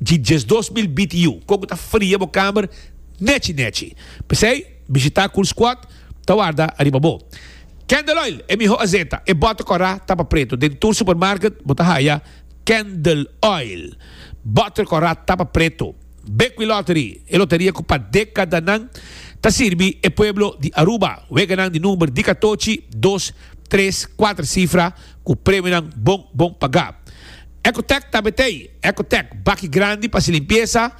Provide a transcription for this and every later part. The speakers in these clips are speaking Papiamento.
dji djes dos mil bit yu kon ku ta fria bo kamer nechi nechi. P'esei bishitá Cool Squad ta warda ariba bo. Candle Oil e mihó azeta, e bòt ta kòrá tapa pretu. Den tur supermarket bo ta haya Candle Oil. Bòt ta kòrá tapa pretu. Bekwin Lottery, e loteria ku pa dekadanan ta sirbi e pueblo di Aruba. Weganan di number di katochi, dos, tres, kuater sifra. Cu premionan bon bon pagá. Ecotec ta betey. Ecotec, baki grandi pa si limpieza,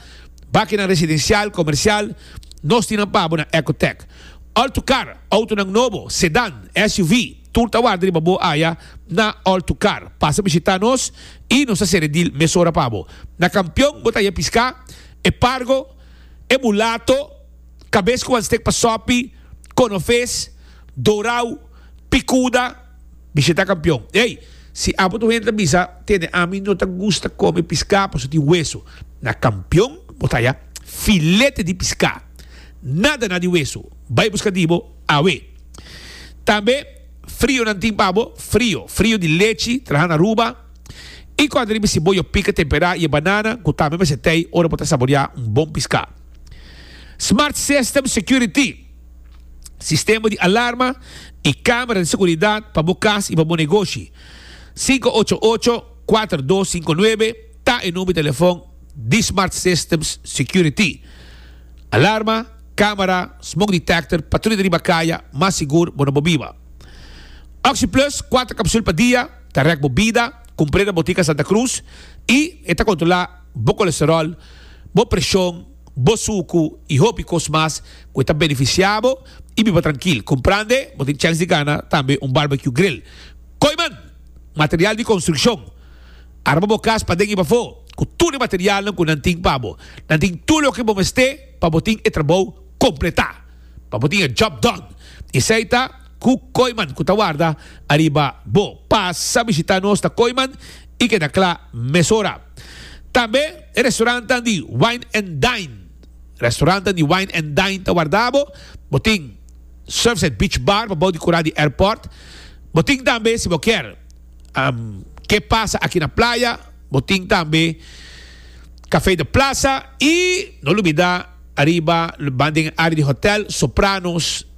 bakinan residencial, comercial, nos tin nan pa bo na Ecotec. All to Car, autonan nobo, sedan, SUV, tur ta warda riba bo aya na All to Car. Pasa bishita nos y nos ta sere deal mesora pa bo. Na Campeon bo ta haya pisca, e pargo, e mulato, cabes cu wan stek pa sopi, conofes, dorao, picuda, Bisheta kampion, Ey, si abo tu hende ta bisa, tene ami no ta gusta kome piská pasobra tin wesu. Na kampion bo ta haya filete di piská, nada na di wesu. Bai buska di bo awe. Tambe frionan tin pa bo, frio, frio di lechi trahá na Aruba, i kòrda riba siboyo pika temperá i e banana ku tambe mester tei ora bo ta saboreá un bon piská. Smart System Security. sistema di alarma i kamera di seguridat pa bo kas i pa bo negoshi. Sinku ocho ocho, kuater dos sinku nuebe ta e number di telefon di Smart Systems Security. Alarma, kamera, smoke detector, patruya di riba kaya, mas sigur bo na bo biba. OxyPlus, kuater kapsul pa dia, ta rèk bo bida, kumpré na Botica Santa Cruz i e ta kontrolá bo kolesteròl, bo preshon, bo suku i hopi kos mas ku e ta benefisiá bo i biba trankil. Kumprende? Bo tin chèns di gana tambe un barbecue grill. Koiman! Material di konstrukshon. Arma bo kas paden i pafó ku tur e materialnan ku nan tin pa bo. Nan tin tur loke bo mester pa bo tin e trabou kompletá, pa bo tin e job done. Esei ta. Ku Koyman ku ta warda ariba bo. Pasa bishita nos na Koyman i keda kla mesora. Tambe e restorantan di Wine and Dine. Restorantan di Wine and Dine ta warda bo. Bo tin Surfside Beach Bar pa bou di kura di airport. Bo tin tambe si bo kier ke pasa aki na playa bo tin tambe Cafe de Plaza i no lubida ariba banda den e área di hotel Sopranos.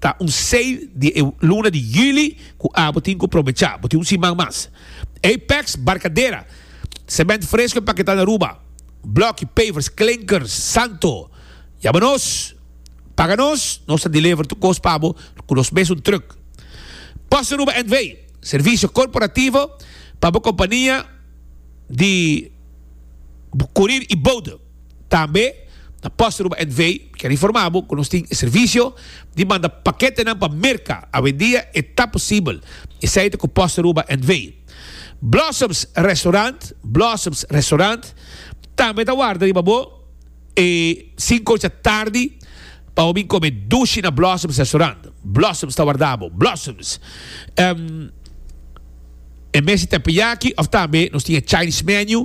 Ta un sei di e luna di juli ku abo tin ku probechá. Bo tin un siman mas. Apex Barkadera, Semènt fresko e paketá na Aruba, blòki, pavers, klinkers, santo. Yama nos, paga nos, nos ta deliver tur kos pa bo ku nos mes un trùk. PostAruba NV, servisio korporativo pa bo kompania di kurir i boude. Tambe na Post Aruba NV mi ker informa bo ku nos tin e servisio di manda paketenan pa Merka. Awendia e ta posibel, esei ta ku Post Aruba NV. Blossoms Restaurant, Blossoms Restaurant, tambe ta warda riba bo e sinku ocha tardi pa bo bin kome dushi na Blossoms Restaurant. Blossoms ta warda bo. Blossoms. E mes di tèmpeyaki òf tambe nos tin e Chinese menu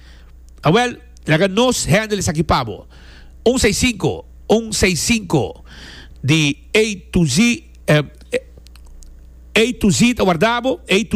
Awel, laga nos hende esaki pa bo. Un seis sinku, un seis sinku di A to Z, A to Z ta warda bo, A to Z.